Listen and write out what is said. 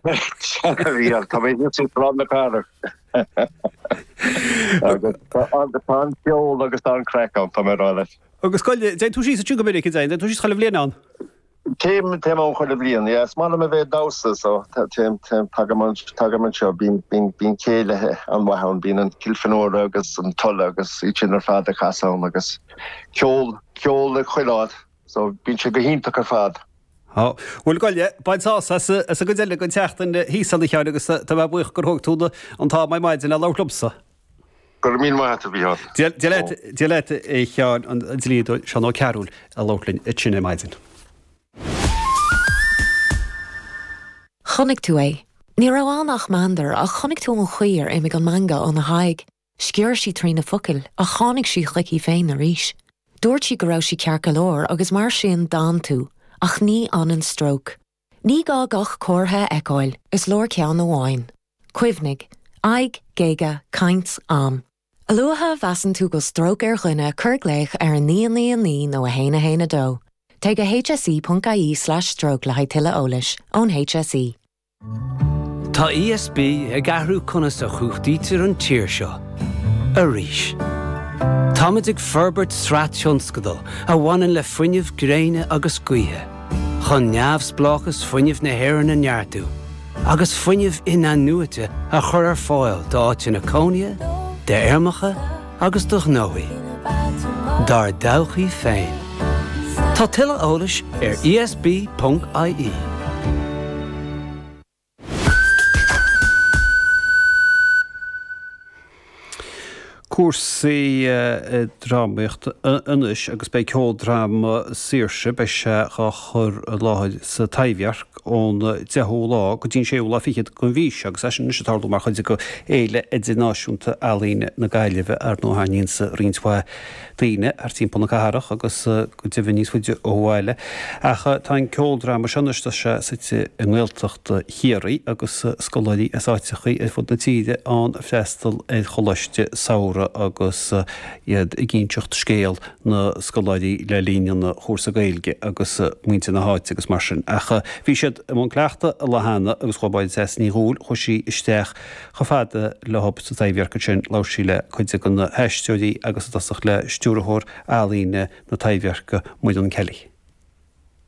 Tá mé thíos ag Sráid na Cathrach agus tá an ceol agus tá an craic ann, tá mé ag rá leat. Agus an dtéann tú síos ansin go minic, dtéann tú síos chuile bhliain ann? Téim ann chuile bhliain, yeah. Is maith liom a bheith ag damhsa so tagaim anseo, bíonn céilithe an-mhaith ann, bíonn an Kilfenora agus an Tulla agus iad sin ar fad ag casadh ann agus ceol ag chuile áit. So, bíonn sé go hiontach ar fad. Á, bhuel gabh i leith, bain sásamh as, as an gcuid eile den tseachtain thíos ann a Sheáin agus tá mé buíoch gur thóg tú an t-am ar maidin le labhairt liomsa. Go raibh míle maith a't a Mhícheál. Dia, dia leat, dia leat a Sheáin, an dlíodóir Seán Ó Cearbhaill ag labhairt linn ansin ar maidin. Chonaic tú é. Ní raibh ann ach meandar ach chonaic tú an chaoi ar imigh an meangadh óna haghaidh. Sciorr sí trí na focail ach tháinig sí chuici féin arís. Dúirt sí go raibh sí ceart go leor agus mar sin d'fhan tú, ach ní fhanann stróc. Ní gá gach comhartha a fheiceáil, is leor ceann amháin. Cuimhnigh, aghaidh, géaga, caint, am. A luaithe a mheasann tú go bhfuil stróc ar dhuine cuir glaoch ar 999 nó 112. Téigh go hse.ie/stroke le haghaidh tuilleadh eolais, ón hse. Tá ESB ag athrú conas a chumhachtaítear an tír seo arís. Táimid ag forbairt sraith tionscadal a bhaineann le fuinneamh gréine agus gaoithe, chun neamhspleáchas fuinnimh na hÉireann a neartú agus fuinneamh inathnuaite a chur ar fáil d'áiteanna cónaithe, d'fheirmeacha agus do ghnóthaí dár dtodhchaí féin. Tá tuilleadh eolais ar ESB ponc ie. Cúrsaí drámaíochta anois agus beidh ceoldráma Saoirse, beidh sé dhá chur i láthair sa Taibhdhearc. ón deichiú lá go dtí an séú lá fichead den mhí seo, agus é sin anois ag tarlú mar chuid de Fhéile Idirnáisiúnta Ealaíne na Gaillimhe, ar ndóigh. Tarraingíonn sé roinnt mhaith daoine thart timpeall na cathrach agus go deimhin níos faide ó bhaile, ach tá an ceoldráma seo anois, tá sé suite i nGaeltacht Chiarraí agus scoláirí as áiteachaí ar fud na tíre ann ag freastal ar choláiste samhraidh agus é ag inseacht scéal na. na scoláirí le linn an chúrsa Gaeilge agus muintir na háite agus mar sin ach bhí siad i mbun cleachtadh an lá cheana agus chuaigh Máire Treasa Ní Dhubhghaill, chuaigh sí isteach chomh fada leob sa Taibhdhearc ansin labhair sí le cuid de na haisteoirí agus i dtosach le stiúrthóir ealaíne na Taibhdheirce Muireann Kelly.